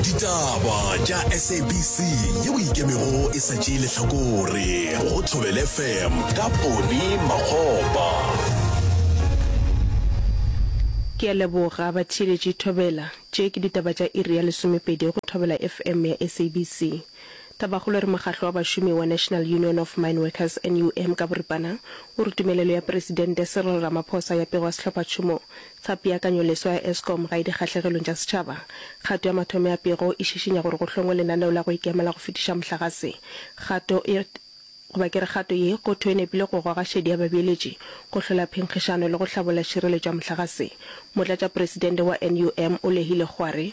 Ditaba tša SABC yeo e ikemego e sa tšee lehlakore go Thobel FM ka Poni Makgopa. Ke a leboga batheeletši Thobela. Tše ke ditaba tša iri ya lesomepedi go Thobela FM ya SABC. Tabakgolo re mokgatlo wa bašomi wa National Union of Mine Workers, NUM, ka boripana o re tumelelo ya Presidente Cyril Ramaphosa ya pego ya sehlophatšhomo tsa peakanyoleswa ya Eskom ga e dikgahlegelong tša setšhaba. Kgato ya mathomo ya pego e šišinya gore go hlongwe lenaneo la go ikemela go fetiša mohlagase. Kgato e, goba ke re kgato ye, go thwe e nepile go goga šedi ya babeeletši, go hlola phenkgišano le go hlabolla tšhireletšo ya mohlagase. Motlatšapresidente wa NUM o lehile gwa re,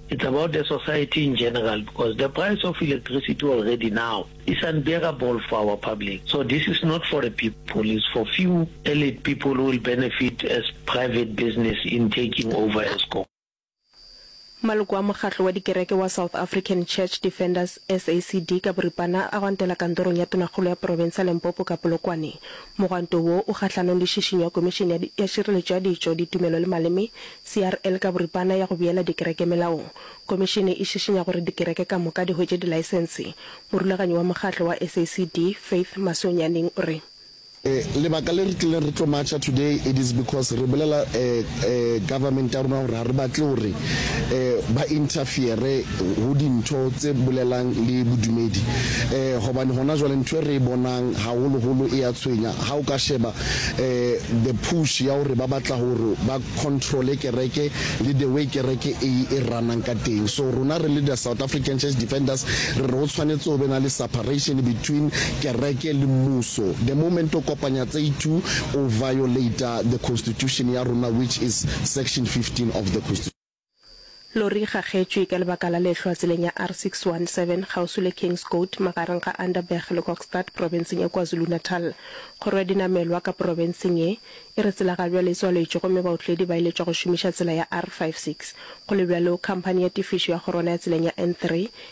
It's about the society in general because the price of electricity already now is unbearable for our public so this is not for the people it's for few elite people who will benefit as private business in taking over Eskom. Maloko a mokgatlo wa dikereke wa South African Church Defenders, SACD, ka boripana a gwantela kantorong ya tonakgolo ya porofense ya Limpopo ka Polokwane. Mogwanto wo o kgahlanong le šišinyo ya Komišene ya Šireletšo ya Ditšo, Ditumelo le Maleme CRL ka boripana ya go beela dikereke melaong. Komišene e šišinya gore dikereke ka moka di hwetše dilaesense. Morulaganyi wa mokgatlo wa SACD, Faith Masoonyaneng o re. Lebaka le re tlileng re tlo matšha today it is because re bolela government ya rona gore ga re batle gore ba interfere go dintho tse bolelang le bodumedi gobane gona jwale ntho e re e bonang gagolo-golo e a tshwenya ga o ka sheba um the push ya gore ba batla gore ba controle kereke le the way kereke e e ranang ka teng so rona re le the south african church defenders re re go tshwanetse go be na le separation between kereke le mmuso the moment o kopanya tse two o violata the constitution ya rona which is section 15 of the constitution Lori e gagetšwe ka lebaka la lehlwa tseleng ya R617 kgauswi le Kingscote magareng ga Underberg le Kokstad profenseng ya KwaZulu-Natal. Kgoro ya dinamelwa ka profenseng ye e re tsela ga bjale e tswaletšwe gomme baotledi ba iletšwa go šomiša tsela ya R56. Go le bjalo, khamphani ya tefišo ya kgorwana ya tseleng ya N3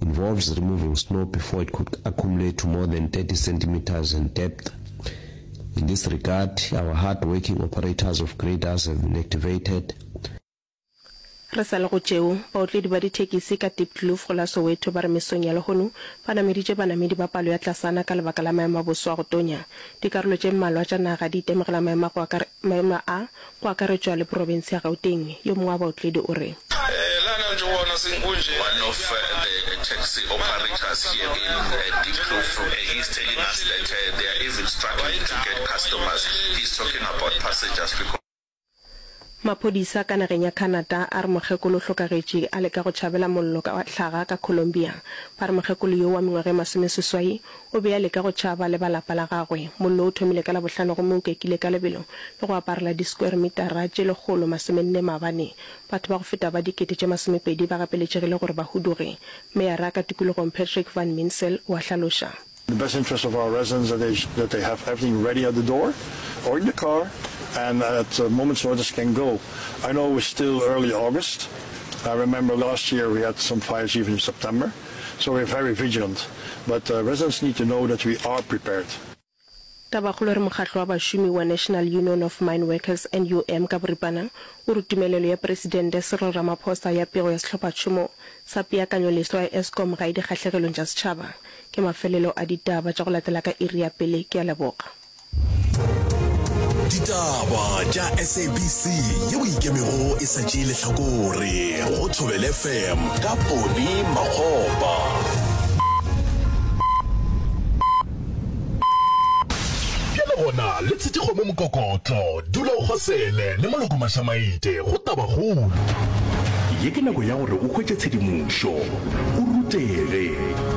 involves removing snow before it could accumulate to more than 30 centimeters in depth. In this regard, our hard-working operators of graders have been activated. Re sa le go tšeo, baotledi ba dithekisi ka Diepkloof go la Soweto ba re mesong ya lehono ba nameditše banamedi ba palo ya tlasana ka lebaka la maemo a boso a go tonya. Dikarolo tše mmalwa tša naga di itemogela maemo a go maemo a go akaretšwa le profense ya Gauteng. Yo mongwe wa baotledi o re. One of the taxi operators here in Diepkloof he is telling us that they are even struggling to get customers, he is talking about passengers because. Maphodisa ka nageng ya Canada a re mokgekolo o hlokagetše a leka go tšhabela mollo wa hlaga ka Colombia. Ba re mokgekolo yo wa mengwaga e masomeseswai O be a leka go tšaba le ba lapa la gagwe. Mollo o thomile ka Labohlano gomme o kekile ka lebelo le go aparela diskweremitara tše lekgolo masomenne mabane. Batho ba go feta ba dikete tše masomepedi ba gapeletšegile gore ba huduge, meyara ka tikologong Patrick Van Minsel o a hlaloša. The best interest of our residents that they that they have everything ready at the door or in the car and at a moment's notice can go. I know it was still early August. I remember last year we had some fires even in September. So we're very vigilant, but residents need to know that we are prepared. Tabakgolo re mokgatlo wa bašomi wa National Union of Mine Workers, NUM, ka boripana o re tumelelo ya Presidente Cyril Ramaphosa ya pego ya sehlophatšhomo sa peakanyoleswa ya Eskom ga e dikgahlegelong tša setšhaba. Ke mafelelo a ditaba tša go latela ka iri ya pele. Ke a leboga. ditaba tša sabc yeo e ikemego e sa tšee lehlakore go thobele fm ka pone makgopa bjale gona le tshetikgo mo mokokotlo dula o kgosele le maloko mašamaite go tabagolo ye ke nako ya gore o hwetše tshedimošo o rutege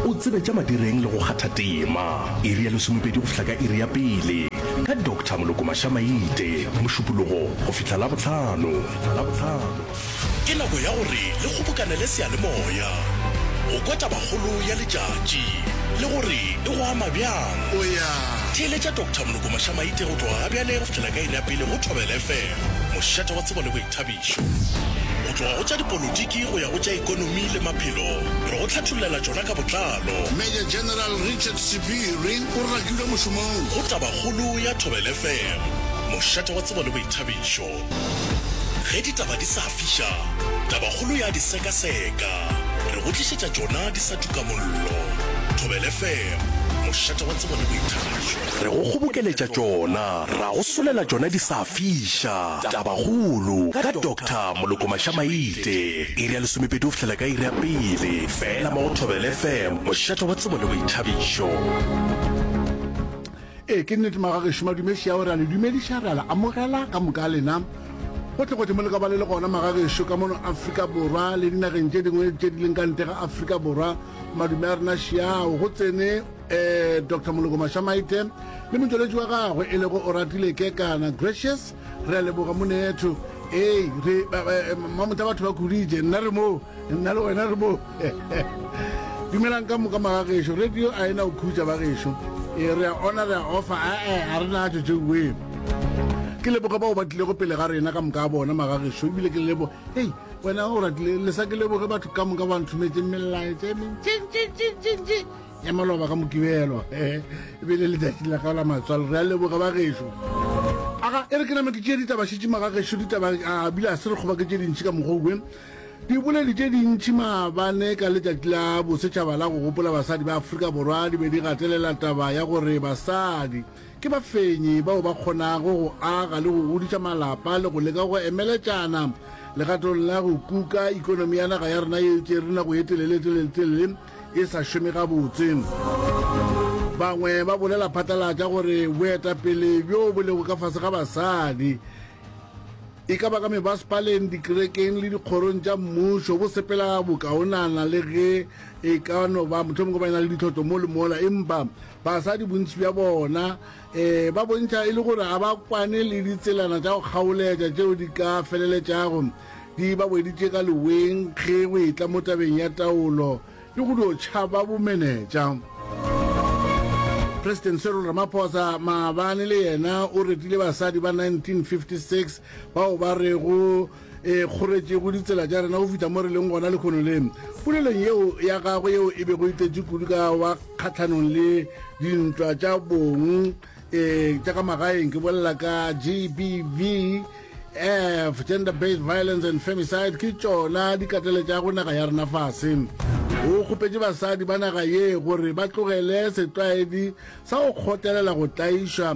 o tsebe tša madireng le go kgatha tema Iri ya lesomepedi go fihla ka iri ya pele ka Doctor Moloko Mashamaite, Mošupologo go fihla Labohlano. Ke nako ya gore le kgobokanele seyalemoya go kwa tabakgolo ya letšatši le gore e go ama bjang. Theeletša Doctor Moloko Mashamaite go tloga gabjale go fihla ka iri ya pele go Thobela FM, mošate wa tsebo le boithabišo. Tlhakišo. Go tloga go tša dipolotiki go ya go tša ekonomi le maphelo, re go hlathollela tšona ka botlalo. Major General Richard Sephiri o rakilwe mošomong. Go Tabakgolo ya Thobel FM, mošate wa tsebo le boithabišo. Ge ditaba di sa fiša, Tabakgolo ya di sekaseka. Re go tlišetša tšona di sa tuka mollo. Thobel FM, mošate wa tsebo le boithabišo. Re go kgobokeletša tšona, ra go solela tšona di sa fiša. Tabakgolo ka Doctor Moloko Maša-Maite, iri ya lesomepedi go fihlela ka iri ya pele feela mo go Thobela FM, mošate wa tsebo le boithabišo. Ee, ke nnete magagešo madumeši ao re a le dumediša re a le amogela ka moka lena gotlhegotlhe mo le ka ba le le gona magagešo ka mono afrika borwa le dinageng tše dingwe tše di leng ka ntle ga afrika borwa madume a rena šiao go tsene Doctor Moloko Mašamaite le motšweletši wa gagwe e lego Oratile Kekana Gracious, re a leboga monetho. Ee, re eh, mamotla batho ba kuditše, nna re moo, nna le wena re moo. Dumelang ka moka magagešo, radio a ena go khutša bagešo. Ee, re a ona, re a ofa, ae, a re natšo tšeuwee. Ke leboga bao ba tlilego pele ga rena ka moka a bona magagešo, ebile ke lebo, hei, wena o ratile, le sa ke leboge batho ka moka ba nthometšeng melaetša e mentšintšintšintšintši. ya maloba ka mokibelo e be le letšatši la ka la matswalo re a leboga ba gešo aga e re ke name ke tšee ditaba šetšima ga gešo ditaba a bile a se re kgoba ke tše dintšhi ka mokgwa oe diboledi tše dintšhi maabane ka letšatši la bosetšhaba la go gopola basadi ba aforika borwa di be di gatelela taba ya gore basadi ke bafenyi bao ba kgonago go aga le go godiša malapa le go leka go emeletšana legatong la go kuka ikonomi ya naga ya rena ye tše re nako ye telele telele telele e sa šome gabotse. Bangwe ba bolela phatlalatša gore boetapele bjo bo lego ka fase ga basadi e ka ba ka mebasepaleng dikerekeng le dikgorong tša mmušo bo sepela bokaonana le ge e ka no ba mohlomongwe ba e na le ditlhotlo mo le mola empa basadi bontši bja bona Ee, ba bontšha e le gore ga ba kwane le ditselana tša go kgaoletša tšeo di ka feleletšago di ba weditše ka leweng ge go etla mo tabeng ya taolo le go dio tšhaba bomenetša. President Cyril Ramaphosa maabane le yena o retile basadi ba 1956 bao ba rego e kgoretšego ditsela tša rena go fihla mo re leng gona lekgono le polelong yeo ya gagwe yeo e bego e tletše kudu ka wa kgatlhanong le dintwa tša bong um tša ka magaeng ke bolela ka gbv f gender based violence and femicide ke tšona di katleletšago naga ya rena fase o kgopetše basadi ba naga ye gore ba tlogele setlwaedi sa go kgotelela go tlaišwa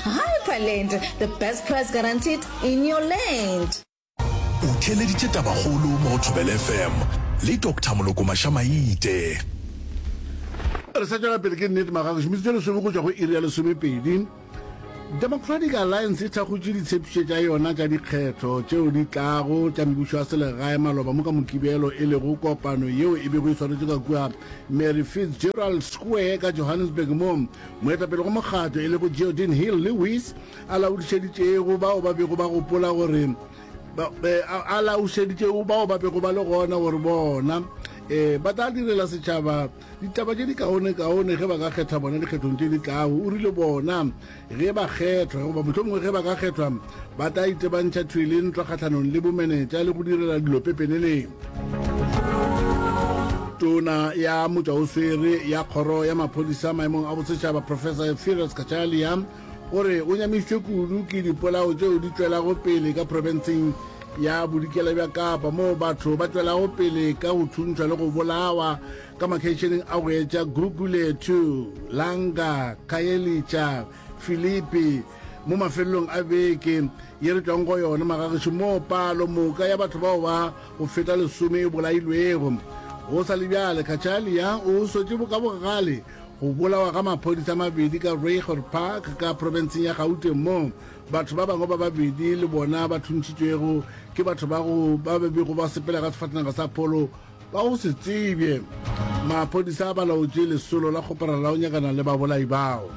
Hyperland, the best price guaranteed in your land. O theeleditše tabakgolo mo go Thobela FM le Doctor Moloko Maša-Maite. Re sa tšwela pele ke Nate Magago, šomiso tše lesome go tšwa go iri ya lesomepedi. Democratic Alliance e thakgotše ditshepišo tša yona tša dikgetho tšeo di tlago tša mebušo ya selegae maloba mo ka Mokibelo e lego kopano yeo e bego e swanetše ka kua Mary Fitzgerald Square ka Johannesburg moo Moetapele go mokgatlo e lego Geodin Hill Lewis a laodišeditšego bao ba bego ba gopola gore a laodišeditšego bao ba bego ba le gona gore bona um ba tla direla setšhaba ditaba tše di kaonekaone ge ba ka kgetha bona dikgethong tše di tlago. O rile bona ge ba kgethwa goba mohlomongwe ge ba ka kgethwa ba tla itebantšha thwele ntwa kgatlhanong le bomenetša le go direla dilo pepeneneng tona ya motšaoswere ya kgoro ya maphodisa maemong a bosetšhaba professor efirus kachalia o re o nyamišitšwe kudu ke dipolao tšeo di tšwelago pele ka profenseng ya bodikela bja kapa moo batho ba tšwelago pele ka go thuntšhwa le go bolawa ka makgeišeneng a go etša gugulethu langa khayelitsha filipi Mo mafelelong a beke ye re tšwago go yona magagešo moo palo moka ya batho bao ba go feta lesome e bolailwego, go sa le bjale Cachalia o swetše ka bogale go bolawa ga maphodisa a mabedi ka Ruigoord Park ka profenseng ya Gauteng moo batho ba bangwe ba babedi le bona ba thuntšitšwego ke batho ba go ba bego ba sepela ka sefatanaga sa pholo Ka go se tsebje, maphodisa a balaotše lesolo la kgoparara la go nyakana le babolai bao.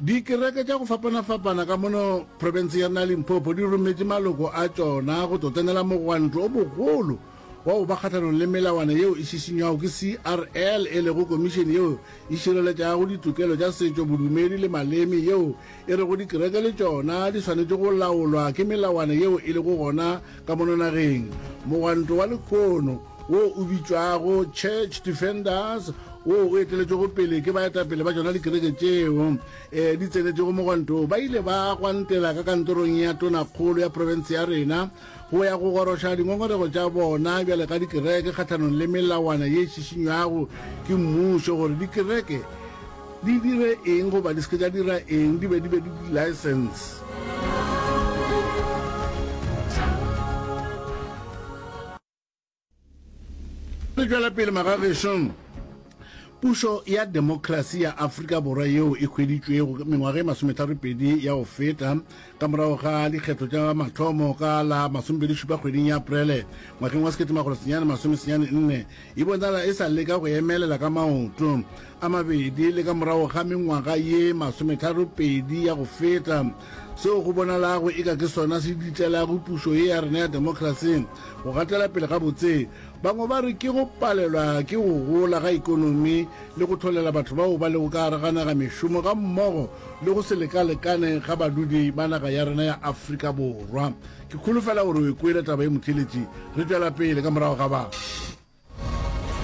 Dikereke tša go fapana-fapana ka mono profenseng ya rena ya Limpopo di rometše maloko a tšona go tlo tsenela mogwanto o bogolo wa go ba kgahlanong le melawana yeo e šišinywago ke CRL e lego komišene yeo e šireletšago ditokelo tša setšo, bodumedi le maleme yeo E rego dikereke le tšona di swanetše go laolwa ke melawana yeo e lego gona ka mono nageng. Mogwanto wa lehono wo o bitšwago Church Defenders wo o eteletšwego pele ke baetapele ba tšona dikereke tšeo e di tsenetšego mogwanto wo ba ile ba gwantela ka kantorong ya Tonakgolo ya profense ya rena go ya go goroša dingongorego tša bona bjale ka dikereke kgahlanong le melawana ye šišinywago ke mmušo gore dikereke di dire eng goba di se ke tša dira eng di be di be le di-license. Re tšwela pele magagešo. Pušo ya demokrasi ya Afrika Borwa yeo e hweditšwego mengwaga e masometharopedi ya go feta ka morago ga dikgetho tša mathomo ka la masomebedišupa kgweding ya Aprele ngwageng wa sekete magolo senyane masomesenyane nne e bonala e sa leka go emelela ka maoto a mabedi le ka morago ga mengwaga ye masometharopedi ya go feta Seo go bonalago eka ke sona se ditlelago pušo ye ya rena ya demokrasi go gatela pele gabotse. Bangwe ba re ke go palelwa ke go gola ga ikonomi le go hlolela batho bao ba lego ka gare ga naga mešomo gammogo le go se lekalekane ga badudi ba naga ya rena ya Afrika Borwa. Ke kholofela gore o e kwele taba ye Motheeletši. Re tšwela pele ka morago ga ba.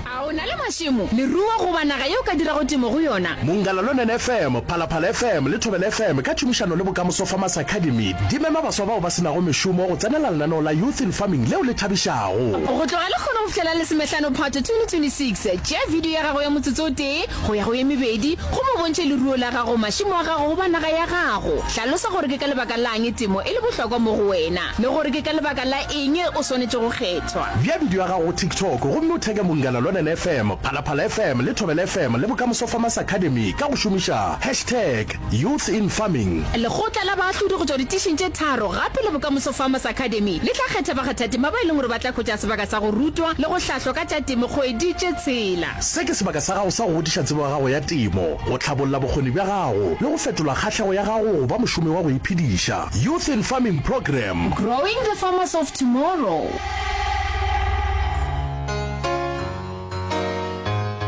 A o na le mašemo, leruo goba naga ye o ka dirago temo go yona? Mongalaluonen FM, Phalaphala FM le Thobela FM ka tšhomišano le Bokamoso Farmers Academy di mema baswa bao ba se nago mešomo go tsenela lenaneo la Youth in Farming leo le thabišago. Go tloga lekgolo go fihlela lesomehlano Phatwe 2026, tšea bidio ya gago ya motsotso o tee go ya go ye mebedi gomme o bontšhe leruo la gago, mašemo a gago goba naga ya gago. Hlalosa gore ke ka lebaka la'ng temo e le bohlokwa mo go wena. le gore ke ka lebaka la eng o swanetše go kgethwa. Bea bidio ya gago go TikTok gomme o theke Mongana Lonene FM, Phalaphala FM le Thobela FM le Bokamoso Farmers Academy ka go šomiša hashtag Youth in Farming. Lekgotla la baahlodi go tšwa ditišing tše tharo gape le Bokamoso Farmers Academy le tla kgetha bakgathatema ba e leng gore ba tla hwetša sebaka sa go rutwa le go hlahlwa ka tša temo kgwedi tše tshela. Se ke sebaka sa gago sa go godiša tsebo ya gago ya temo, go hlabolla bokgoni bja gago le go fetola kgahlego ya gago go ba mošomi wa go iphediša. Youth in Farming Program. Growing the Farmers of Tomorrow.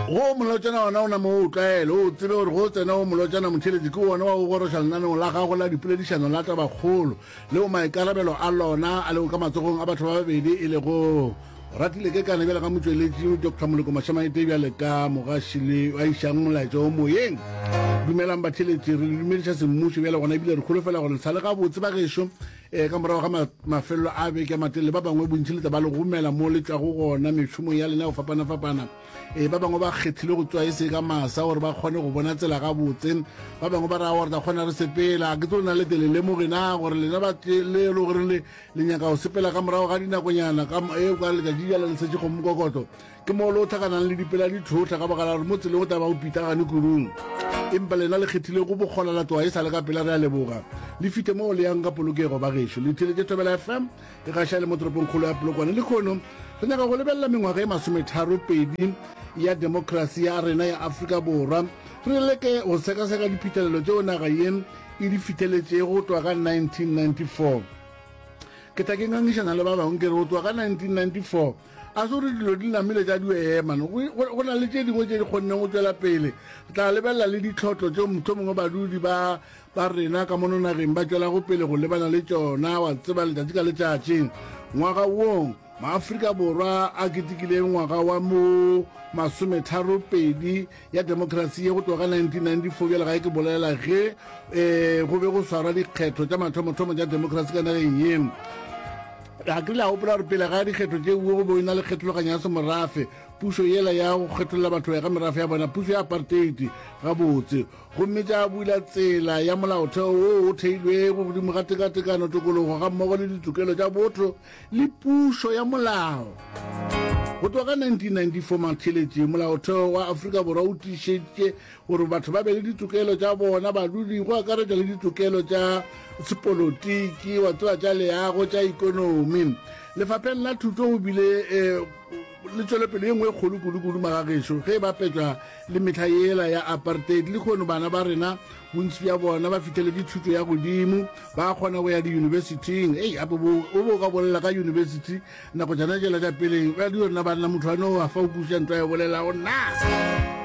Go molotšana ona o namo o tlwaele o tsebe gore go tsena o molotšana motheletsi ke ona wa go goroša lenaneo la gago la dipoledišano la tabakgolo leo maikarabelo a lona a lego ka matsogong a batho ba babedi e lego Ratile Kekana bjale ka motšweletši Doctor Moloko Mashamaete bjale ka mogaši le a išang molaetša wo moyeng. Dumelang batheletši, re le dumediša semmušo bjale gona ebile re kholofela gore le sa le gabotse ba gešo. E, ka morago ga ma, mafelelo a beke a matelele ba bangwe bontši le tla ba le gomela mo le tšwago gona mešomong ya lena go fapana-fapana. E, ba bangwe ba kgethile go tswa e se ka masa gore ba kgone go bona tsela gabotse. Ba bangwe ba ra gore tla kgona re sepela. Ke tlo nna le telele mo gena gore lena ba le gore le Le nyaka go sepela ka morago ga dinakonyana ka e o ka letšatši jala le setše kgomo kokoto ke moo le o tlhakanang le dipela di tlhotlha ka baka la gore mo tseleng o taba go pitagane kurung empa lena le kgethile go bokgola la tloga e sa le ka pela re a leboga le fihle moo le yang ka polokego ba gešo le theletše thobela fm e gaša le mo toropong kgolo ya polokwane le kgono re nyaka go lebelela mengwaga e masometharo pedi ya demokrasi ya rena ya afrika borwa re leke go sekaseka diphitlhelelo tšeo naga ye e di fiteletšego go tloga ka 1994. Ke tla ke ngangišana le ba bangwe ke re go tloga ka 1994 a se gore dilo di namile tša di ema no, go, go na le tše dingwe tše di kgonneng go tšwela pele. Re tla lebelela le ditlhotlo tšeo mohlomongwe badudi ba ba rena ka mono nageng ba tšwelago pele go lebana le tšona, wa tseba, letšatši ka letšatši. Ngwaga wong, maAfrika Borwa a ketekileng ngwaga wa mo masometharo pedi ya demokrasi ye go tloga 1994 bjale ga e ke bolela ge um go be go swarwa dikgetho tša mathomothomo tša demokrasi ka nageng ye ga ke la gopola gore pele ga dikgetho tše uwe go be o na le kgethologanyo ya semorafe pušo yela ya go kgetholola batho go ya ka merafe ya bona pušo ya aparteiti gabotse gomme tša bula tsela ya molaotheo wo o theilwego godimo ga tekatekano tokologo ga mmogo le ditokelo tša botho le pušo ya molao. Go tloga ka 1994 maktheletše, molaotheo wa Afrika Borwa o tiišeditše gore batho ba be le ditokelo tša bona badudi, go akaretša le ditokelo tša sepolotiki, wa tseba tša leago, tša ikonomi. Lefapheng la thuto go bile eh, le tswelopele ye nngwe e kgolo kudu-kudu magagešo ge e bapetšwa le mehla yela ya apartheid le kgono bana ba rena bontsi bja bona ba fihleledi thuto ya godimo ba kgona go ya diyunibesithing ei ape o bo ka bolela ka yunibesithi nako jana jela ja peleng ba di yona banna motho a no a fa o kuša nto ya bolelago na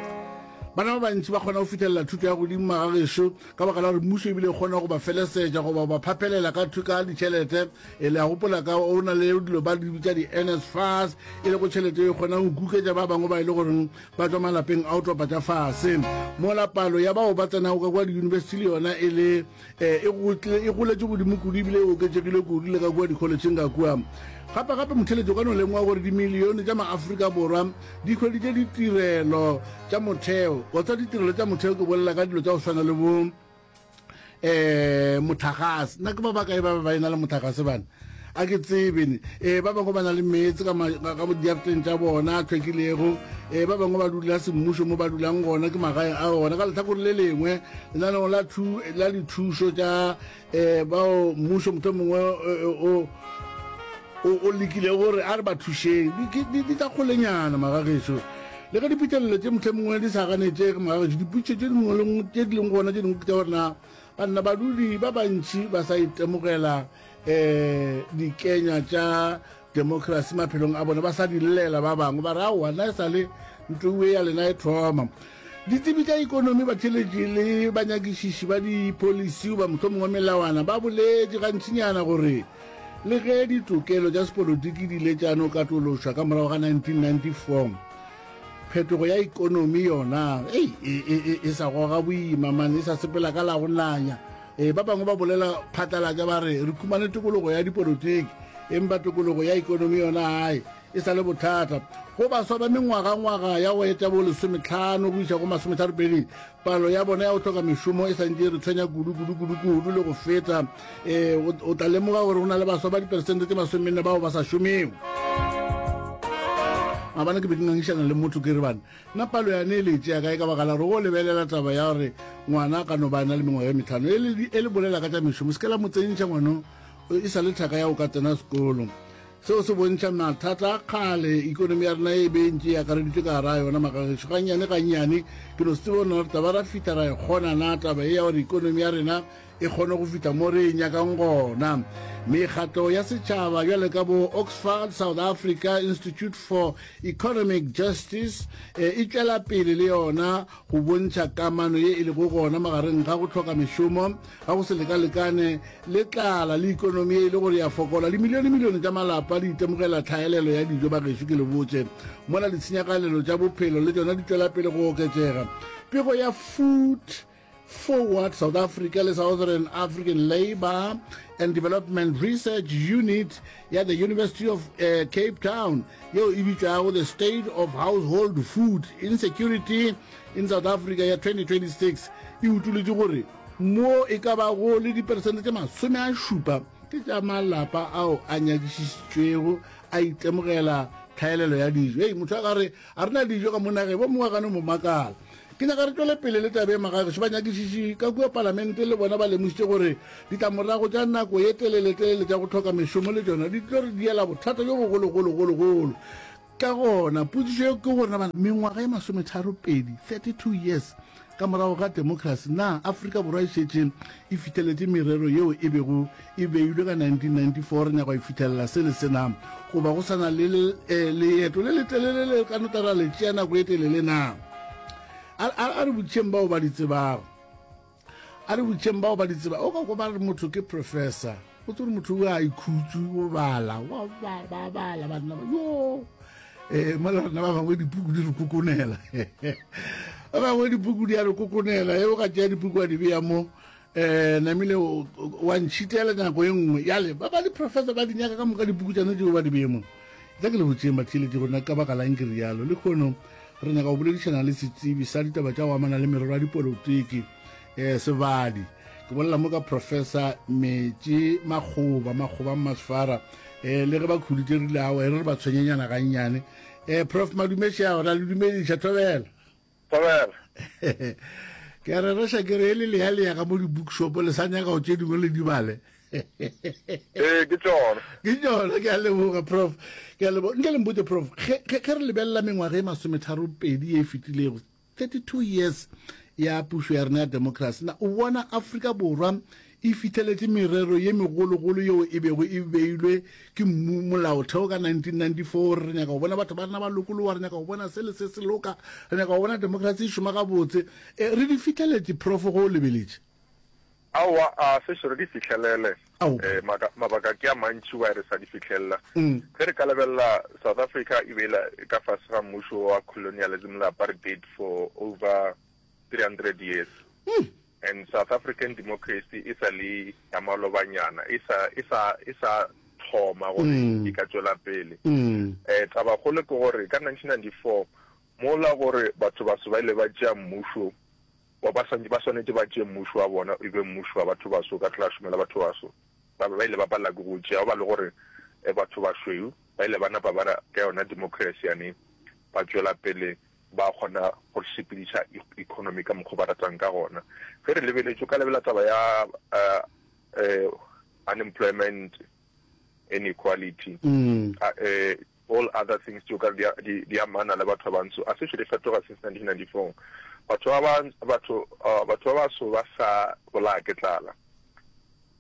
bana ba bantši ba kgona go fitlhelela thuto ya godimo magagešo ka baka la gore mmuso ebile e kgona go ba felesetša goba ba phaphelela ka thuka ditšhelete e le a gopola ka o na le dilo ba di bitsa di-nsfas e le go tšhelete e kgonang go kuketša ba bangwe ba e le goreng ba tšwa malapeng a o topa tša fase mola palo ya bao ba tsenago ka kwa diyunibesithi le yona e le eh, e, e goletše godimo kudu ebile e oketšegile kudu le ka kua dikholetšheng ka kua gape-gape motheletšo ka no lemoga gore dimilione tša maaforika borwa di hweditše ditirelo tša motheo kotsa ditirelo tša motheo ke bolela ka dilo tša go swana le bo eh motlhagase nna ke ba bakae ba ba ena le motlhagase bana a ke tsebene eh ba bangwe ba na le meetse ka diafteng tša bona a tlhwekilego eh ba bangwe ba dula semmušo mo ba dulang gona ke magaeng a gona ka letlhakore le lengwe lenaneo la la dithušo tša eh bao mmušo motlho mongwe o o lekile gore a re ba thušeng di tla kgolenyana magagešo Le ge diphihlelelo tše mohlomongwe di sa ganetšege mogagetši, dipotšišo tše dingwe le ngwe tše di leng gona tše dingwe ke tša gore na ba nna badudi ba bantši ba sa itemogela um dikenywa tša democracy maphelong a bone ba sa di llela ba bangwe ba re aowa nna e sa le ntlo ya lena e thoma ditsebi tša ikonomi batheletši le banyakišiši ba dipolisi goba mohlomongwe melawana ba boletše gantšinyana gore Le ge ditokelo tša sepolotiki di ile tša no katološwa ka morago ga 1994, phetogo ya ekonomi yona ei, e, e, e, e sa goga boima, man, e sa sepela ka la go nanya. E, ba bangwe ba bolela phatlalatša ba re, re khumane tokologo ya dipolotiki, empa tokologo ya ekonomi yona, hai, E sa le bothata go baswa ba mengwagangwaga ya go eta bo lesometlhano go iša go masometharopedi, palo ya bona ya go tlhoka mešomo e santše e re tshwenya kudu-kudu-kudu-kudu le go feta. E, o, o tla lemoga gore go na le baswa ba diperesente tse masomenne bao ba sa šomego. Maabane ke be ke ngangišana le motho ke re bana, nna palo yane e le tšea kae ka baka la gore go lebelela taba ya gore ngwana a ka no ba a na le mengwaga e metlhano e le, e le bolela ka tša mešomo, se ke la mo tsentšha ngwano e sa le thaka ya go ka tsena sekolo. Seo se bontšha mathata a kgale ikonomi ya rena e be e ntše e akareditšwe ka gare a yona. Magagešo, gannyane gannyane ke no se tsebe gore na re tla ba ra fihla ra e kgona na taba e ya gore ikonomi ya rena e kgone go fihla mo re e nyakang gona. Mekgatlo ya setšhaba bjale ka bo Oxfard South Africa Institute for Economic Justice e tšwela pele le yona go bontšha kamano ye e lego gona magareng ga go hloka mešomo ga go se lekalekane le tlala le ikonomi ye e le gore ya fokola. Dimilionemilione tša malapa di itemogela tlhaelelo ya dijo. Bagešo, ke le botše, mola ditshenyagalelo tša bophelo le tšona di tšwela pele go oketšega. Pego ya Food Forward South Africa le Southern African Labour and Development Research Unit ya the University of uh, Cape Town yeo e bitšwago the state of household food insecurity in South Africa ya 2026 e utuletše gore mo e ka bago le diperesente tše masome a šupa ke tša malapa ao a nyakišišitšwego a itemogela tlhaelelo ya dijo ei motho a ka re a rena dijo ka monageng bo mongwe gane mo makala Ke nyaka re tšwele pele le taba e magagešo. Banyakišiši ka kua Palamente le bona ba lemošitše gore ditlamorago tša nako ye teleletelele tša go hloka mešomo le tšona di tlo re diela bothata bjo bogologologologolo. Ka gona, potšišo yeo ke gore na mengwaga ye masometharopedi, 32 years, ka morago ga demokrasi, na Afrika Borwa e šetše e fitheletše merero yeo e bego E beilwe ka 1994, re nyaka go e fithelela se le sena, goba go sa na le eh, leeto le letelele le ka no tla ra le tšea nako e telele na? A, a, a re botšheng bao ba di tsebago a re botšheng bao ba di tseba o ka ko ba re motho ke professor o tsore motho o a ikhutsu o bala wa ba bala banna yo eh mo le rena ba bangwe dipuku di re kokonela ba bangwe dipuku di a re kokonela e o ka tšea dipuku a di beya mo um namile wa ntšhitela nako e nngwe yale ba ba diprofesa ba dinyaka ka moka dipukutšane tšeo ba di bemo tla ke le botseng mathieletse gona ka baka lang ke rialo le kgono re nyaka go boledišana le setsebi sa ditaba tša go amana le merero ya dipolotiki um sebadi ke bolela mo ka professor metše makgoba makgoba masfara um le ge ba khuditše rile ao e re re ba tshwenyenyana gannyane um prof madumeša gore a le dumediša thobela Thobela. Ke a re reša ke re e le leya leya ka mo di-bookshop le sa nyaka go tše dingwe le dibale. Ee, ke tsona. Ke tsona, ke a leboga prof. Ke a leboga. Nke le mpotse prof, ge re lebelela mengwaga e masometharo pedi e fetilego, 32 years ya pušo ya rena ya democracy na o bona Afrika Borwa e fihleletše merero ye megologolo yeo e bego e beilwe ke mmu molaotheo ka 1994 re nyaka go bona batho ba rena ba lokologa re nyaka go bona se le se se loka re nyaka go bona democracy e šoma gabotse e, re di fihleletše profo go o lebeletše Aowa a se šoro di fihlelele e, mabaka ke a mantši wa re sa di fihlelela mm. ge re ka lebelela South Africa e be e ka fase ga mmušo wa colonialism le apartheid for over 300 years mm. And South African democracy e sa le ya malobanyana, e sa, e sa, e sa thoma gore e ka tšwela pele. Eh, tabakgolo ke gore ka 1994, mola gore batho baso ba ile ba tšea mmušo, ba, ba, swantše, ba swanetše ba tšee mmušo wa bona e be mmušo wa batho baso, ka tlala šomela batho baso, ba be ba ile ba palela ke go o tšea, ba le gore eh, batho bašweu ba ile ba napa ba ra ka yona democracy yane ba tšwela pele ba kgona go sepediša economy ka mokgwa o ba ratang ka gona. Ge re lebeletše, o ka lebelela taba ya unemployment, inequality, all other things tšeo ka di amana le batho ba bantsho. A se šele fetoga since 1994. Batho ba baso ba sa bolaya ke tlala.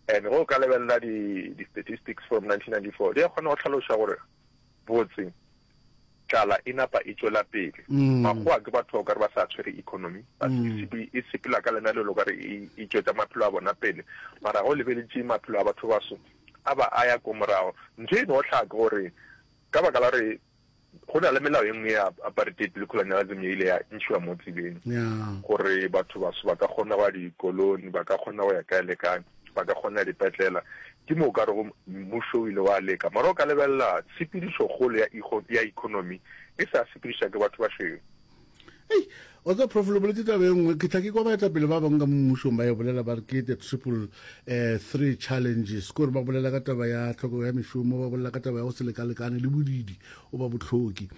And ge o ka lebelela di-statistics from 1994, di a kgona go hlaloša gore Botse, tlala e napa e tšwela pele. Makgowa ke batho okare ba sa tshwere economy, ba e sepela ka lenalelo okare e e tšwetša maphelo a bona pele. Mara ga o lebeletše maphelo a batho baso a ba a ya ko morago. Ntho e no hlaha ke gore ka baka la gore go na le melao e nngwe ya apartheid le colonialism e ile ya ntšhiwa mo tseleng gore batho baso ba ka kgona go ya dikoloni, ba ka kgona go ya kae le kae. ba ka kgona dipetlela, ke mo o ka rego mmušo o ile wa leka. Mara o ka lebelela tshepedišokgolo ya, ya ekonomi e sa sepediša ke batho bašweu. Ei, wa tseba prof le boletse taba e nngwe ke tla ke kwa baetapele ba bangwe ka mo mmušong ba e bolela ba re ke the triple um three challenges kore ba bolela ka taba ya tlhokego ya mešomo ba bolela ka taba ya go se lekalekane le bodidi o ba botlhoki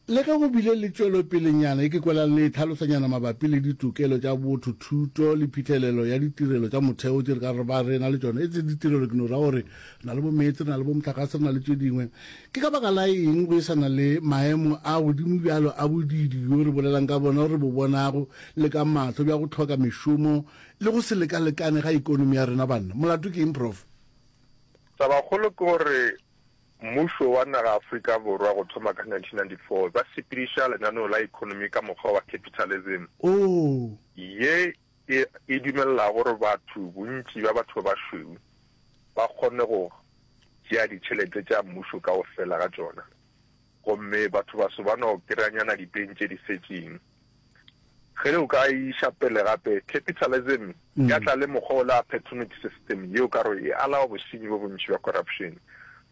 Le ge go bile le tšwelopelenyana e ke kwelang le e tlhalosanyana mabapi le ditokelo tša botho, thuto le phihlelelo ya ditirelo tša motheo tše re ka ba re na le tšona, e se ditirelo, ke no ra gore re na le bomeetse, re na le bomohlagase, re na le tše dingwe. Ke ka baka la eng go e sa na le maemo a godimo bjalo a bodiidi bjo re bolelang ka bona, re bo bonago le ka mahlo, bja go hloka mešomo le go se lekalekane ga ekonomi ya rena? Banna, molato ke eng, Prof. Tabakgolo ke gore Mmušo wa naga Afrika Borwa go thoma ka 1994 ba sepediša lenaneo la ekonomi ka mokgwa wa capitalism, ye e e dumelelago gore batho, bontši bja batho ba bašweu, ba kgone go tšea ditšhelete tša mmušo kaofela ga tšona, gomme batho baso ba no kry-a nyana dipeng tše di setšeng. Ge o ka e iša pele gape, capitalism e ka tla le mokgwa o le appertunity system yeo ka gore e alawa bosenyi bo bontši bja corruption.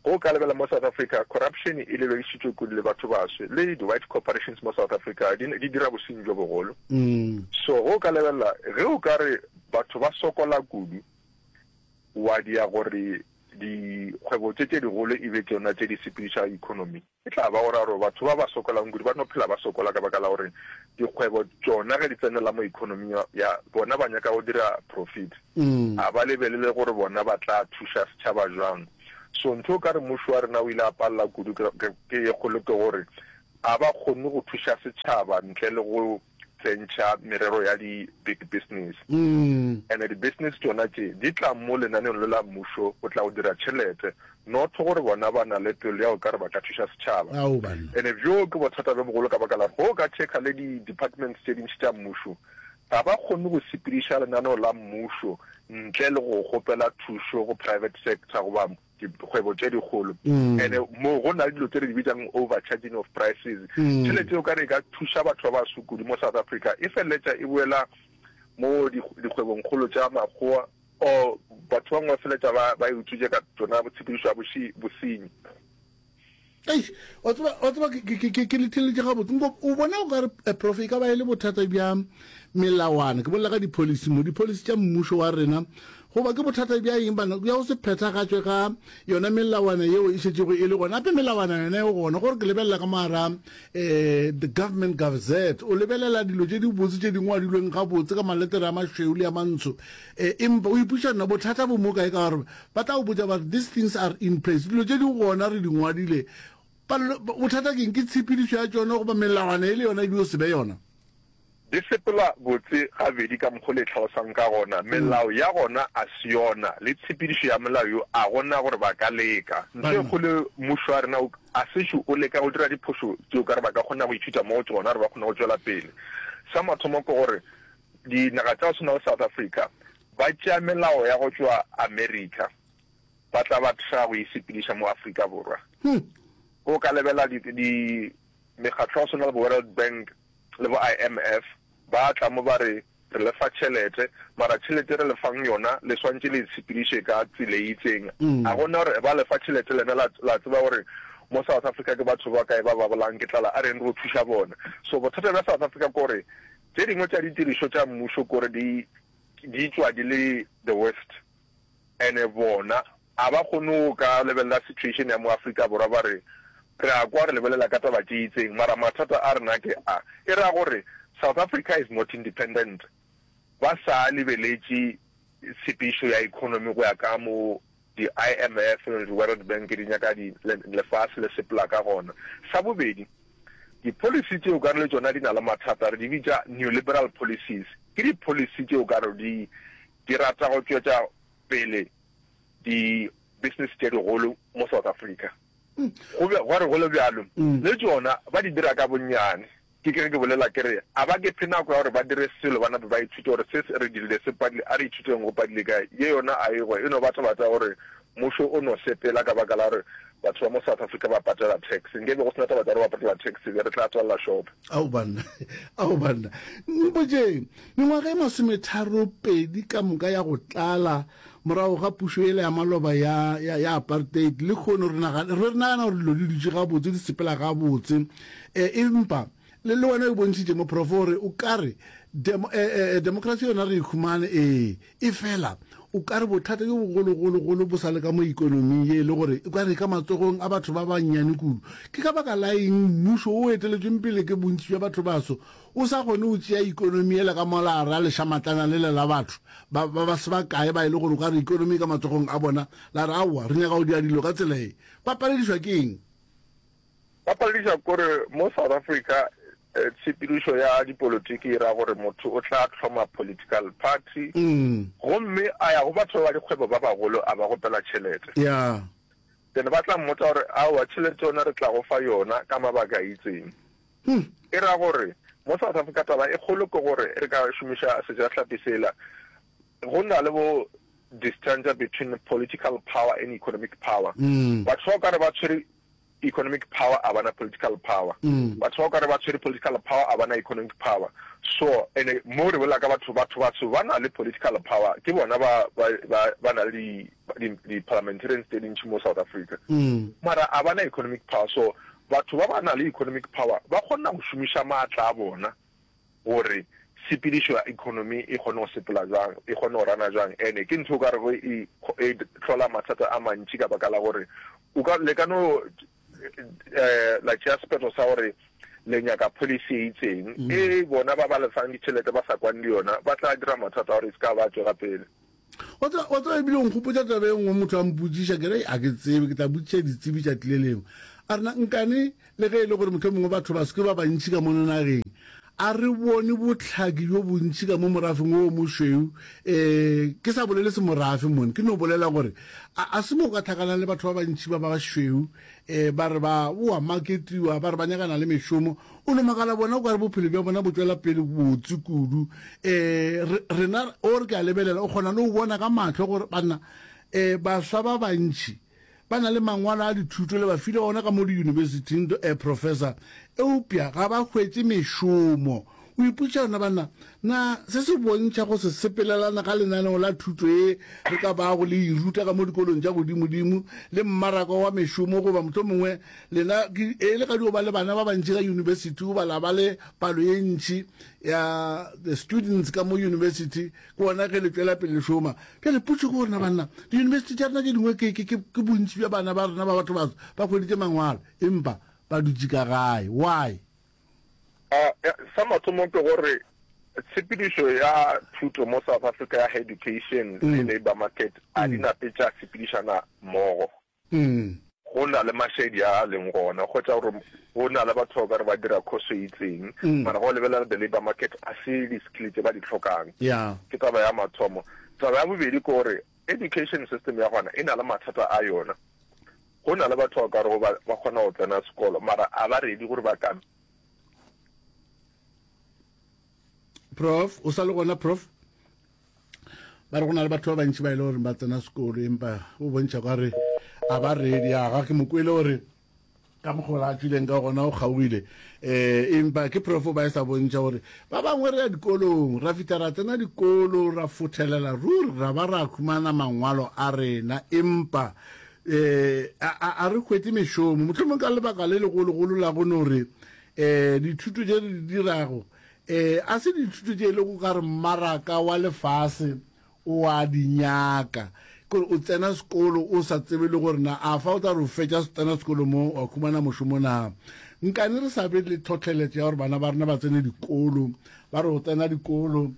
Ge o ka lebela mo South Africa, corruption e lebedišitšwe kudu le batho baswe, le di-white corporations mo South Africa di, di dira bosenyi bjo bogolo. So ge o ka lebelela, ge o ka re batho ba sokola kudu, wa dia gore dikgwebo tše tše digolo e be tšona tše di sepediša economy. E tla ba gore a re batho ba ba sokolang kudu ba no phela ba sokola ka baka la gore dikgwebo tšona ge di tsenela mo economy ya bona ba nyaka go dira profit, a ba lebelele gore bona ba tla thuša setšhaba jwang. So ntho o ka re mmušo wa rena o ile a palela kudu ke ye kgolo ke gore a ba kgonne go thuša setšhaba ntle le go tsentšha merero ya di big business and di business tšona tše di tla mo lenaneong le la mmušo go tla go dira tšhelete not gore bona ba na le pelo ya go ka re ba ka thuša setšhaba and bjo ke bothata bjo bogolo ka baka la go ka checka le di departments tše dintši tša mmušo ga ba kgone go sepediša lenaneo la mmušo ntle le go kgopela thušo go private sector goba dikgwebo tše dikgolo ene moo go na le dilo tse re di bitsang overcharging of prices tšhelete o ka re ka thuša batho ba baso kudu mo South Africa e feleletša e boela mo dikgwebong kgolo tša makgowa or batho ba bangwe ba feleletša ba ba e utswitše ka tsona tshepedišo ya bosenyi Eish, wa tseba wa tseba ke- ke- ke- ke- ke letheletše gabotse nko o bona o ka re eh, prof e ka ba e le bothata bja melawana ke bolela ka dipolisi mo dipolisi tša mmušo wa rena goba ke bothata bja eng bana bja go se phethagatšwe ga yona melawana yeo e šetšego e le gona gape melawana yona e gona gore ke lebelela ka mogara um the government gazette o lebelela dilo tše dibotse tše dingwe wa dilweng gabotse ka maletere a mašweu le a mantsho um empa o ipuša nna bothata bo mo kae ka gore Ba tla go botša ba re, These things are in place. Dilo tše di gona, re di ngwadile. Palelo, bothata ke eng? Ke tshepedišo ya tšona goba melawana e le yona e be o se be yona? Di sepela botse gabedi ka mokgwa o le hlalosago ka gona. Melao ya gona a se yona, le tshepedišo ya molao yo a go na gore ba ka leka. Ntho e kgolo mmušo wa rena o a sešo o leka go dira diphošo tše o ka re ba ka kgona go ithuta mo go tšona gore ba kgone go tšwela pele. Sa mathomo ke gore dinaga tša go swana le South Africa Ba tšea melao ya go tšwa America ba tla ba tla go e sepediša mo Afrika Borwa. O ka lebela di, di mekgatlo ya go swana le bo World Bank le bo IMF ba tla mo ba re re lefa tšhelete mara tšhelete re lefang yona le swantše le tshepediše ka tsela e itseng mm. a gona gore ba lefa tšhelete lena la, la tseba gore mo south africa ke batho ba kae ba ba bolang ke tlala a reng re o thuša bona so bothata bja south africa kore tše dingwe tša ditirišo tša mmušo kore di di tšwa di le the worst and bona a ba kgone go ka lebelela situation ya mo Afrika Borwa ba re re a kwa re lebelela ka taba tše itseng mara mathata a rena ke a e ra gore South Africa is not independent ba sa lebeletše tshepišo ya economy go ya ka mo Di IMF le di World Bank di nyaka di lefase le sepela ka gona. Sa bobedi, di policy tšeo ka re le tšona di na le mathata, re di bitša neoliberal policies, ke di policy tšeo ka re di di rata go tšwetša pele di business tše digolo mo South Africa. Go be gwa re go le bjalo, le tšona ba di dira ka bonnyane. Ke ke ge ke bolela ke re, a ba ke phe nako ya gore ba dire selo ba nape ba ithute gore se se re dirile se padile, a re ithuteng go padile kae, ye yona a e hwe e no ba tabata ya gore mmušo o no sepela ka baka la gore batho ba mo South Africa ba patela tax. Nke be go se na tabata ya gore ba patela tax se be re tla tswalela shopo. Ao banna, ao banna, mpotšeng, mengwaga e masometharo pedi ka moka ya go tlala, Morago ga pušo yela ya maloba ya, ya, ya apartheid, lekhono re nagana, re nagana gore dilo di dutše gabotse, di sepela gabotse. E, empa le, le wena o e bontšhitše, moprofo, gore o ka re demo, e, e, e, demokrasi yona re e humane, ee, efela o ka re bothata bjo bogologologolo bo sa le ka mo ekonoming ye e le gore e ka re e ka matsogong a batho ba bannyane kudu. Ke ka baka la eng mmušo o eteletšweng pele ke bontši bja bathobaso O sa kgone go tšea ekonomi yela ka molara lešamatlana lela la batho ba, ba, ba se ba kae ba e le gore o ka re ekonomi e ka matsogong a bona, la re, Aowa, re nyaka go dira dilo ka tsela e. Ba paledišwa ke eng? Ba paledišwa ke gore mo South Africa tshepedišo ya dipolotiki e ra gore motho o tla hloma political party gomme a ya go batho ba ba dikgwebo ba bagolo a ba kgopela tšhelete. Then ba tla mmotsa gore, Aowa, tšhelete yona re tla go fa yona ka mabaka a itseng. E ra gore mo South Africa taba e kgolo ke gore re ka šomiša sejahlapi sela, go na le bo distancia between political power and economic power. Batho ba o ka re ba tshwere economic power a bana political power, batho ba o ka re ba tshwere political power a bana economic power. So ene mo re bolela ka batho, batho batho ba na le political power ke bona ba ba ba ba na le di, di parliamentarians tse dintši mo South Africa mm. mara a bana economic power so batho ba ba na le economic power ba kgona go šomiša maatla a bona gore sepedišo ya economy e kgone go sepela jang e kgone go rana jang ene ke ntho o ka rego e, e tlhola mathata a mantši ka baka la gore o ka le ka no um la tšea sephetho sa gore le nyaka policy e itseng mm. e bona ba ba lefang ditšhelete ba sa kwane le yona ba tla dira mathata gore e se ka ba tswela pele Wa tseba, wa tseba, ebile o nkgopotša taba e nngwe, motho a mpotsiša, ke re, a ke tsebe, ke tla botsiša ditsebi tšatši le lengwe. A rena, nkane, le ge e le gore mohlomongwe mongwe batho ba se ke ba bantši ka mono nageng, a re bone bohlaki bjo bontši ka mo morafeng wo mošweu, um ke sa bolele semorafe mone, ke no bolela gore a, a se mo o ka hlakalang le batho ba bantši ba bašweu, E, ba re ba oa maketiwa, ba re ba nyakana le mešomo. O no makala bona o ka re bophelo bja bona bo tšwela pele botse kudu. E, re, rena, o re ke a lebelela, o kgona le go bona ka mahlo gore banna, e, baswa ba bantši ba na le mangwalo a dithuto le ba file ona ka mo diyunibesithing, e, professor, eupša ga ba hwetše mešomo. O ipotša yona banna, na se se bontšha go se sepelelana ga lenaneo la thuto e re ka bago le e ruta ka mo dikolong tša godimodimo le mmaraka wa mešomo goba mohlomongwe lena e le ga di o ba le bana ba bantši ka yunibesithi goba la ba le palo ye ntši ya the students ka mo yunibesithi ke ona ge le tšwela pele šoma bjale potšo ke gore na banna diyunibesithi tša rena tše dingwe ke bontši bja bana ba rena ba batho ba ba hweditše mangwalo empa ba dutše ka gae why Sa mathomo ke gore tshepedišo ya thuto mo South Africa ya Heducation le Labour Market a di nape tša sepedišana mmogo. Go na le mašedi a a leng gona kgotsa gore go na le batho ba ka re ba dira khoso e itseng mara go lebelela the Labour Market a se di-skill tse ba di tlhokang. Ke taba ya mathomo. Taba ya bobedi ke gore Education system ya gona e na le mathata a yona. Go na le batho ba o ka rego ba ba kgona go tsena sekolo mara a ba ready gore ba ka. Prof, o sa le gona prof? Ba re go na le batho ba bantši ba e le gore ba tsena sekolo empa o bontšha kwa re a ba ready ya ga ke mo kwele gore ka mokgola a tswileng ka gona o kgaogile um empa ke profo ba e sa bontšha gore ba bangwe re ya dikolong ra fitlha ra tsena dikolo ra fothelela ruri ra ba ra khumana mangwalo a rena empa um a re hwete mešomo, mohlomong ka lebaka le legologolo la go no re um dithuto tše re di dirago um a se dithuto tše e lego ka re mmaraka wa lefase o a di nyaka, kore o tsena sekolo o sa tsebe le gore na a fa o tla re o fetša tsena sekolo mo wa khumana mošomo na. Nkane re sa be le tlhohleletšo ya gore bana ba rena ba tsene dikolo, ba re go tsena dikolo,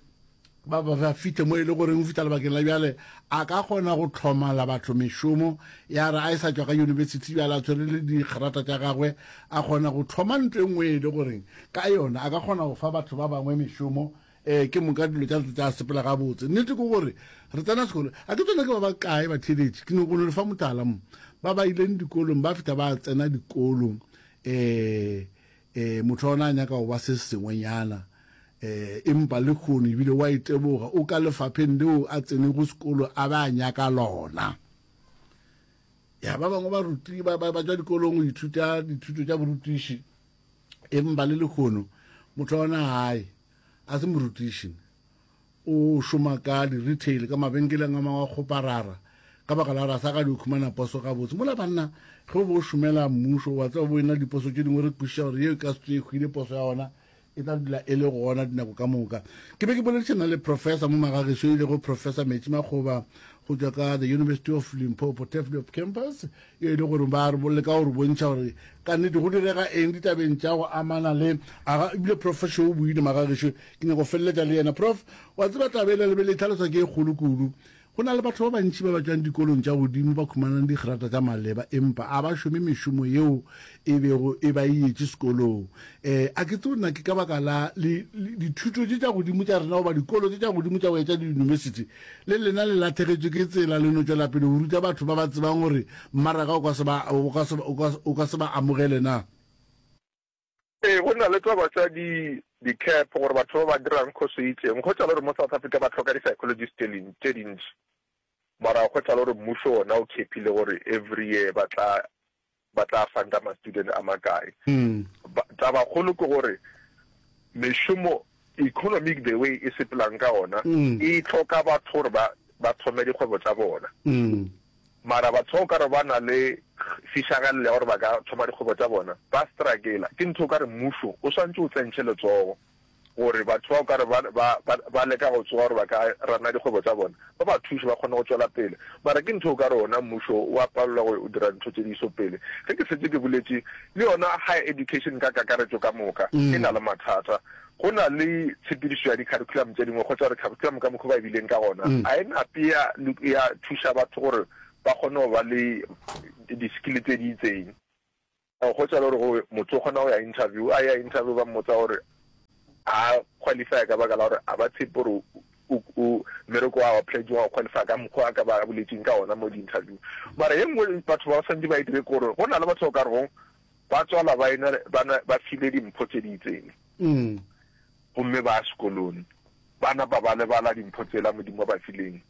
ba ba ba fihle mo e le goreng o fitlha lebakeng la bjale a ka kgona go tlhomala batho mešomo ya re a e sa tswa ka yunibesithi bjale a tshwere le dikgerata tša gagwe a kgona go thoma nto e nngwe e le goreng ka yona a ka kgona go fa batho ba bangwe mešomo um ke moka dilo tša tsa sepela gabotse nnete ke gore re tsena sekolo a ke tsone ke ba ba kae batheletše ke no kono le fa motala mo ba ba ileng dikolong ba fitlha ba tsena dikolong um E, motho wa ona a nyaka go ba se sengwenyana. E, empa lekhono ebile wa iteboga o ka lefapheng leo a tsenego sekolo a ba a nyaka lona. Ya ba bangwe ba ruti ba ba tswa dikolong go ithuta dithuto tša borutiši empa le lekhono motho wa ona gae a se morutiši O šoma ka di-retail, ka mabenkeleng a mangwe a kgoparara. Ka baka la gore a sa ka di khumana poso gabotse. Mola banna, ge o be o šomela mmušo, o a tseba bo e na le diposo tše dingwe, re kwešiša gore yeo e ka se tšwe e hwile, poso ya ona e tla dula e le gona dinako ka moka. Ke be ke boledišana le Professor mo magageso e lego Professor Metši Makgoba go tšwa ka The University of Limpopo, Tafelkop Campus. e le gore ba arbolole ka go re bontšha gore ka nnete go direga eng ditabeng tša go amana le aga ebile prof šo o buile maga gešo ke nyako feleletša le yena prof wa tseba tabe e le lebele e tlhaloswa ke e kgolo kudu go na le batho ba bantši ba ba tšwang dikolong tša godimo ba khumanang digrata tša maleba empa a ba šome mešomo yeo e bego e ba e yetše sekolong. E, a ke tsebo na ke ka baka la li, li, dithuto tše tša godimo tša rena goba dikolo tše tša godimo tša go etša diyunibesithi, le lena le lahlegetšwe ke tsela le no tšwela pele go ruta batho ba ba tsebang gore mmaraka o ka se ba, o ka se, o ka, o ka se ba amogele na? Ee, go na le taba tša di, di-cap, gore batho ba ba dirang khoso e itšeng. Go tšalo gore mo South Africa ba hloka di-psychologist tše li, tše dintši, mara go tšalo gore mmušo wona o khepile gore every year ba tla ba tla fang ka ma student a makae. Taba kgolo ke gore mešomo economic the way e sepelang ka ona e tlhoka batho gore ba ba thome dikgwebo tsa bona. Mara batho ba o ka re ba na le fišagalelo ya gore ba ka thoma dikgwebo tsa bona ba strakela ke ntho o ka re mmušo o swantse o tsentšhe letsogo. gore batho ba o ka re ba, ba, ba, ba leka go tsoga gore ba ka rana dikgwebo tsa bona, ba ba thuše ba kgone go tšwela pele. Mara ke ntho o ka re wona mmušo o a palelwa go dira ntho tše di iso pele. Ge ke šetše ke boletše, le yona higher education ka kakaretšo ka moka e na le mathata. Go na le tshepedišo ya di-curriculum tše dingwe, kgotša re curriculum ka mokgwa o ba e bileng ka gona, ga e na pe ya, ya thuša batho gore ba kgone go ba le di-skill tse di itseng. O hwetša e le gore o motho o kgona go ya interview, a ya interview ba mmotsa gore a qualifya ka baka la gore a ba tshepe gore o mmereko wa wa pledging wa qualify ka mokgwa a ka ba boletseng ka ona mo di-interview mara ye nngwe batho ba santse ba e dire kore go na le batho ba ka regong ba tswala ba ena ba file dimpho tse di itseng mm. gomme ba sekolong ba napa ba lebala dimpho tsela modimo ba fileng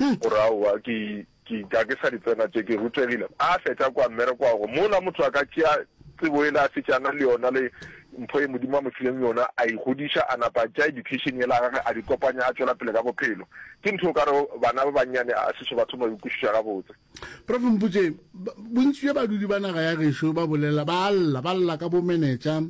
O re, Aowa, ke, ke, ga ke sa di tsena tše, ke rutegile. A fetša kua mmerekoago, mola motho a ka tšea tsebo yela a fetša a na le yona le mpho ye Modimo a mo fileng yona, a e godiša, a napa a tšea education yela ya gagwe a di kopanya a tšwela pele ka bophelo. Ke ntho o ka rego bana ba bannyane a se so ba thoma go e kwešiša gabotse. Prof Mputše, bontši bja badudi ba naga ya gešo ba bolela ba lla ba lla ka bomenetša,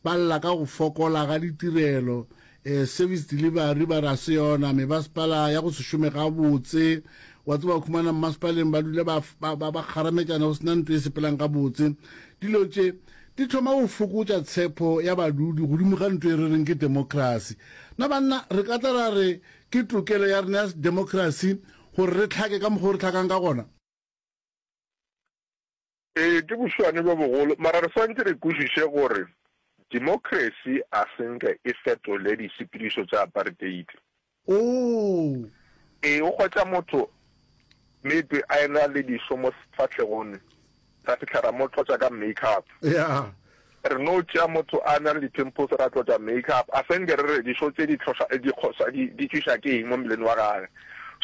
ba lla ka go fokola ga ditirelo, eh, service delivery ba ra se yona, mebaspala ya go se šome gabotse, wa tseba khumana mmaspaleng ba dule ba, ba, ba, ba kgarametšana go sena nto e sepelang gabotse. Dilo tše di thoma go fokotša tshepo ya badudi godimo ga nto e re reng ke democracy. Na banna re ka tla ra re ke tokelo ya rena ya democracy gore re hlake ka mokgwa o re hlakang ka gona? Ee, ke boswane bjo bogolo, mara re swantše re kwešiše gore democracy a se nke e fetole disepedišo tša apartheid. Oo! Ee, o hwetša motho maybe a e-na le dišo mo sefahlegong, Ra fihla ra mo tlotša ka make-up. Yeah. Re no tšea motho a na le di-pimples ra tlotša make-up. A senge re re dišo tše di tlhoša, di kgosa, di, di tšwiša ke eng mo mmeleng wa gage.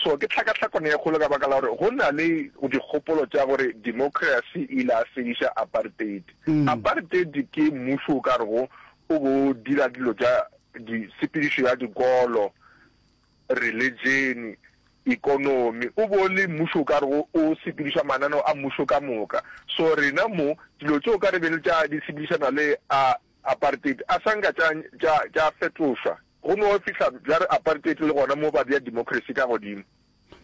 So ke tlhakatlhakano ye kgolo ka baka la gore go na le dikgopolo tša gore democracy e ile ya fediša apartheid. Apartheid ke mmušo o ka rego o bo o dira dilo tša di, tshepedišo ya dikolo, reletšene, ekonomi, o bo le mmušo o ka rego o sepediša mananeo a mmušo ka moka. So rena mo, dilo tšeo ka re be le tša di sepedišana le a apartheid a sa nka tša, tša, tša fetošwa go no fihla bjare apartheid le gona mo ba bea democracy ka godimo.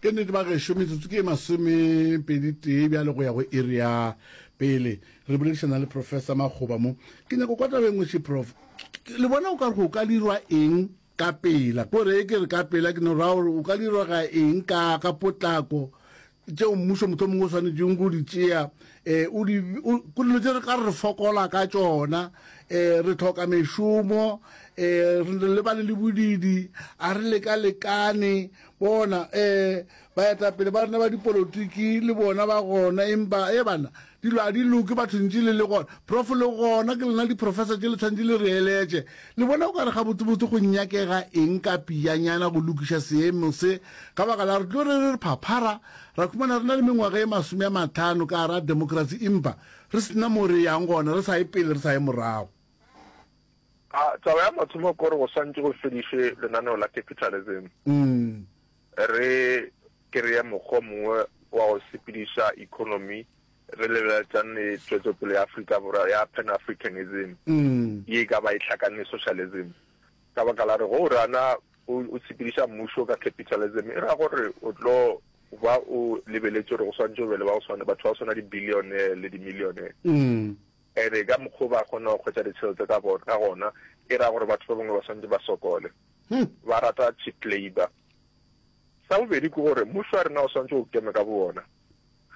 Ke nnete bagešo, metsotso ke e masomepeditee bjale go ya go iri ya pele. Re boledišana le Professor Makgoba mo. Ke nyako kwa tabeng ngwe še Prof. Le bona o ka re go ka dirwa eng ka pela? Ko re e ke re ka pela ke no ra gore o ka dirwa ga eng ka ka potlako tšeo mmušo motho mongwe o swanetšeng go di tšea um o di ko dilo tse re ka re fokola ka tšona um re tlhoka mešomo um re lebane le bodidi a re leka lekane Bona, ee, baetapele ba rena ba dipolotiki le bona ba gona, empa, ee, bana, dilo a di loke bathong tšele le gona. Prof, le gona ke lena diprofesa tšele tshwantše le re eletše. Le bona o ka re gabotsebotse go nyakega eng ka piyanyana go lokiša seemo se, ka baka la re tlo re re re phaphara, ra khumana re na le mengwaga e masome a matlhano ka gare ga demokrasi empa re se na mo re yang gona, re sa ye pele re sa ye morago. A Taba ya mathomo ke gore go swantše go fedišwe lenaneo la capitalism, re kreye mokgwa o mongwe wa go sepediša economy re lebelelatšane le tšwetšopele ya Afrika Borwa ya Pan-Africanism ye e ka ba e hlakane le socialism. Ka baka la gore ge o rana o o sepediša mmušo ka capitalism e ra gore o tlo ba o lebeletše gore go swantše go be le ba go swana, batho ba go swana di-billionaire le di-millionaire. Ebe ka mokg'o ba kgona go hwetša ditšhelete ka gona, e ra gore batho ba bangwe ba swanetše ba sokole. Ba rata cheap labour. Sa bobedi ke gore mmušo wa rena o swanetše o keme ka bowona.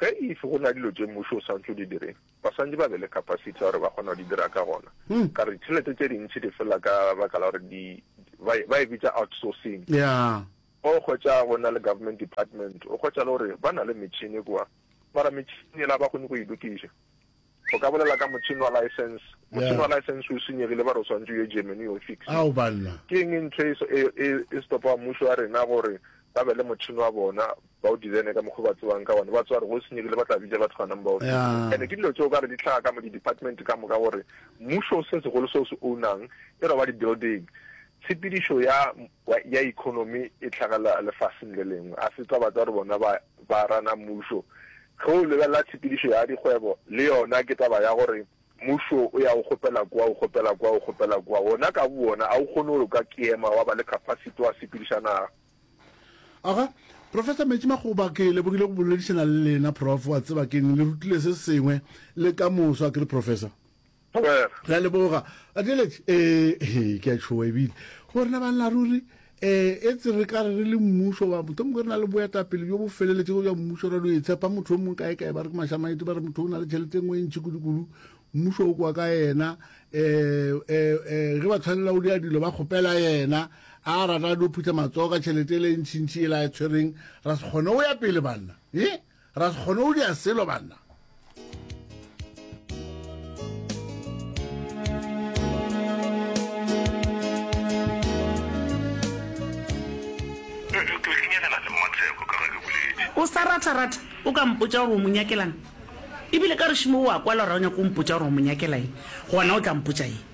Ge if go na dilo tše mmušo o swanetše o di dire, ba swanetše ba be le capacity ya gore ba kgona go di dira ka gona. Ka gore ditšhelete tše dintši di fela ka baka la gore ba e bitša outsourcing. O hwetša go na le government department, o hwetša le gore ba na le metšhini kwa, mara metšhini yela ga ba kgone go e lokiša. O ka bolela ka motšhene wa laesense. Motšhene wa laesense o senyegile, ba re o swantše o ye Germany o yo o fixa. Ke eng e ntle e e, e, e stopago mmušo wa rena gore ba be le motšhene wa bona, ba o designe ka mokgwa o ba tsebang ka wona? Ba tseba gore ge o senyegile ba tla bitša batho ganang ba o fitše. And-e ke dilo tše o ka re di hlaga ka mo di-department ka moka gore mmušo se segolo se o se own-ang e no ba di-building, tshepedišo ya ya, ya economy e tlhagela lefaseng le lengwe. A se taba tsa gore bona ba, ba rana mmušo. Ge o lebelela tshepedišo ya dikgwebo, le yona ke taba ya gore mmušo o ya o kgopela kua, o kgopela kua, o kgopela kua. Wona ka bowona a o kgone gore o ka keema wa ba le capacity wa sepediša naga. Aga, Professor Metšimakgoba, ke lebogile go boledišana le lena, Prof. Wa tseba ke'ng, le rutile se sengwe le ka moso, a ke re, Professor? Thobela. Re a leboga. Adeletše, ee, he, ke a tšhoa ebile. Go rena banna ruri, ee, etse re ka re re le mmušo wa, mohlomongwe re na le boetapele bjo bo feleletšego bja mmušo, ra no e tshepa motho yo mongwe kae-kae, ba re ke mašamaete, ba re motho o na le tšhelete e nngwe e ntši kudu-kudu, mmušo o kwa ka yena, ee, ee, ee, ge ba tshwanela o dira dilo ba kgopela yena, a rata a no phutha matsogo ka tšhelete e le e ntšintši e la e tshwereng, ra se kgone o ya pele banna, ee. Ra se kgone go dira selo, banna. O sa ratha-ratha, o ka mpotša gore o mo nyakelang. Ebile ka gešo moo o a kwala gore ga o nyake go mpotša gore o mo nyakela eng, gona o tla mpotša eng?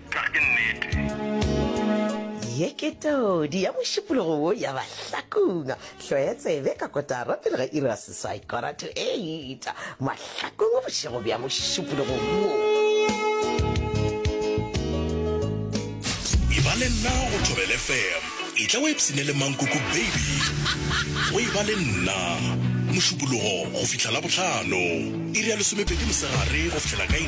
Ka ke nnete. Ye ke todi ya mošupologo wo ya Mahlakong. Hloya tsebe ka kotara pele ga iri ya seswai, quarter to eight, Mahlakong bošego bja mošupologo wo. E ba le nna go Thobel FM. Etla o ipshine le Mankoko baby go E ba le nna. Mošupologo go fihla Labohlano, iri ya lesomepedi mosegare go fihlela ka iri.